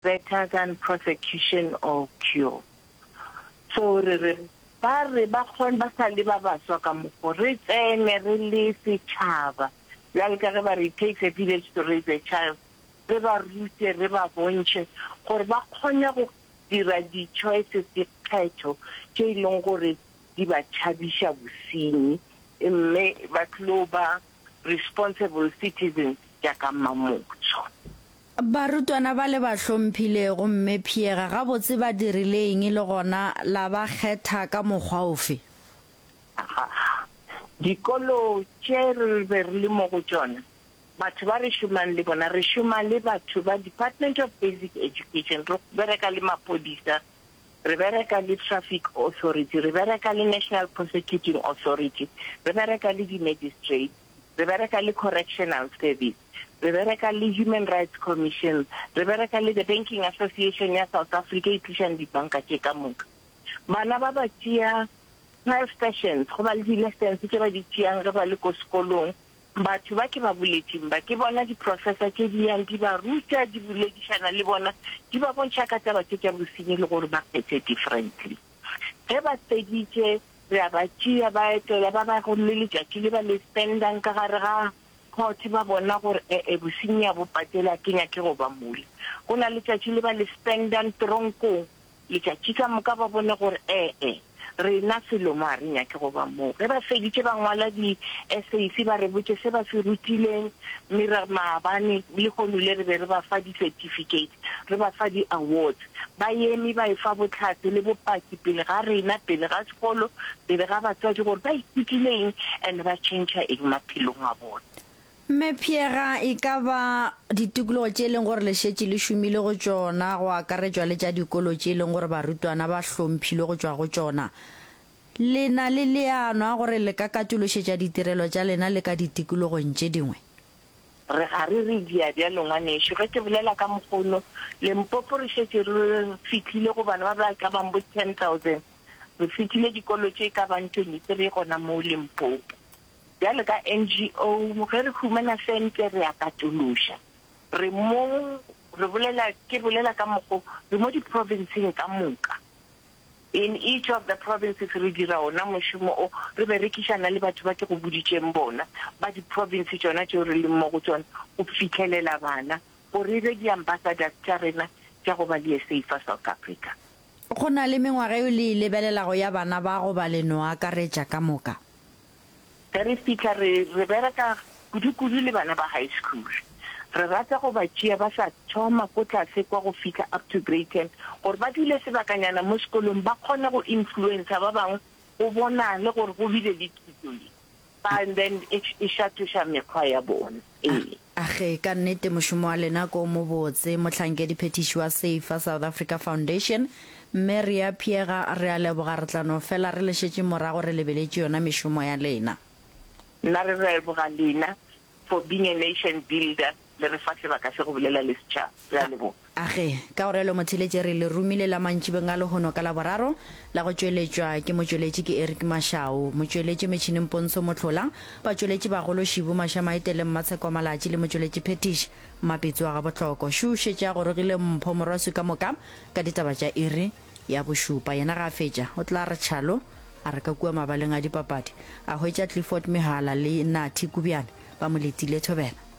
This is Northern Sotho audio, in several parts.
better than prosecution or cure. So re re ba re ba kgone ba sa le ba baswa ka mokgo re tsene re le setšhaba bjale ka ge ba re it takes a village to raise a child re ba rute re ba bontšhe gore ba kgone go dira di choices dikgetho tše e leng gore di ba tšhabiša bosenyi mme ba tlo ba responsible citizens jaaka mamotho. Barutwana ba le ba hlomphile gomme pheega gabotse ba dirile eng le gona la ba kgetha ka mokgwa ofe? Ga dikolo tše re be re le mo go tšona, batho ba re šomang le bona, re šoma le batho ba Department of Basic Education, re bereka le maphodisa, re bereka le Traffic Authority, re bereka le National Prosecuting Authority, re bereka le di-magistrates, re bereka le Correctional Service. re bereka le Human Rights Commission, re bereka le The Banking Association ya South Africa e tlišang dibanka tše ka moka. Bana ba ba tšea trial sessions, go ba le di-lessons tše ba di tšeang ge ba le ko sekolong. Batho ba ke ba boletšeng ba, ke bona di-professor tše di yang di ba ruta, di boledišana le bona, di ba bontšha ka taba tše tša bosenyi le gore ba phethe differently. Ge ba feditše, re a ba tšea ba etela ba ba go le letšatši le ba le spend-ang ka gare ga. Gotee ba bona gore ee bosenyi a bo patele a ke nyake go ba mola. Go na letšatši le ba le spendang teronkong letšatši ka moka ba bone gore ee rena selo mo a re nyake go ba moo. Ge ba feditše ba ngwala di essays ba re botše se ba se rutileng mme ra maabane lehono le re be re ba fa di certificate re ba fa di awards. ba eme ba efa bohlatse le bopaki pele ga rena, pele ga sekolo, pele ga batswadi gore ba ithutile eng and ba tšhentšha eng maphelong a bona. Mme Pheega, e ka ba ditokologo tše e leng gore le šetše le šomile go tšona, go akaretšwa le tša dikolo tše e leng gore barutwana ba hlomphilwe go tšwa go tšona, le na le leano a gore le ka katološetša ditirelo tša lena le ka ditikologong tše dingwe? Re ga re re dia bjalo ngwanešu. Ge ke bolela ka mokgono Limpopo re šetše re fihlile go bana ba ba ka bang bo 10,000. Re fetile dikolo tše ka bang 23 gona moo Limpopo. Bjalo ka NGO ge re humana sente re a katološa. Re mo, re bolela, ke bolela ka mokgo re mo diprovinseng ka moka. In each of the provinces re dira ona mošomo o, re berekišana le batho ba ke go boditšeng bona ba di province tšona tšeo re leng mo go tšona go fihlelela bana gore e be di ambassadors tša rena tša go ba le a safer South Africa. Go na le mengwaga yeo le e lebelelago ya bana ba go ba le no akaretša ka moka? Ge re fihla, re, re bereka kudukudu le bana ba high school. Re rata go ba tšea ba sa thoma ko tlase kwa go fihla up to grade ten, gore ba dule sebakanyana mo sekolong, ba kgone go influencer ba bangwe go bonale gore go bile le thuto ye, ba, and then e, e šatoša mekgwa ya bona. pele. Age, ka nnete mošomo wa lena ke o mobotse, mohlankedi phethiši wa Safer South Africa Foundation. Mme re a pheega, re a leboga, re tla no fela re le šetše morago re lebeletše yona mešomo ya lena. Nna re reboga lena for being a nation builder, le re fa sebaka se go bolela le setšhaba. Re a leboga. Age, ka go realo motheeletše re le romile la mantšibeng a lehono ka Laboraro, la go tšweletšwa ke motšweletši ke Eric Mashau, motšweletši metšhining Pontsho Mohlola, batšweletši bagolo Shibu Mashamaite le Mmatshekwa Malatši le motšweletši phethiši Mmapitsi wa Gabohloko. Šušetša Gorogile Mpho morwaswi ka moka ka ditaba tša iri ya bošupa. Yena ge a fetša o tla re tšhalo a re ka kua mabaleng a dipapadi a hwetša Clifford Mehala le Nathi Kubjana ba mo letile thobela.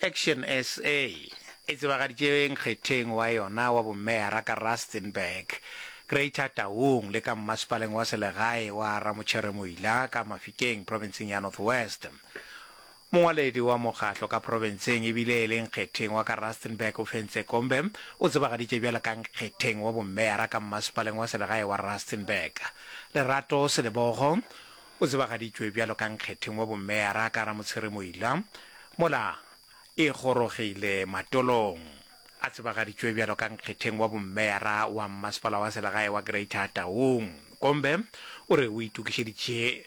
Action SA e tsebagaditše nkgetheng wa yona wa bomeyara ka Rustenburg, Greater Taung le ka mmasepaleng wa selegae wa Ramotšheremoila ka Mafikeng profenseng ya North West. Mongwaledi wa mokgatlo ka profenseng e bile e le nkgetheng wa ka Rustenburg Ofentse Kombe o tsebagaditše bjalo ka nkgetheng wa bomeyara ka mmasepaleng wa selegae wa Rustenburg. Lerato Selebogo O tsebagaditšwe bjalo ka nkgetheng wa bommeara ka Ramotsheri Moila mola e gorogile matolong. A tsebagaditšwe bjalo ka nkgetheng wa bommeara wa mmasepala wa selegae wa Greater Taung. Kombe o re o itokišeditše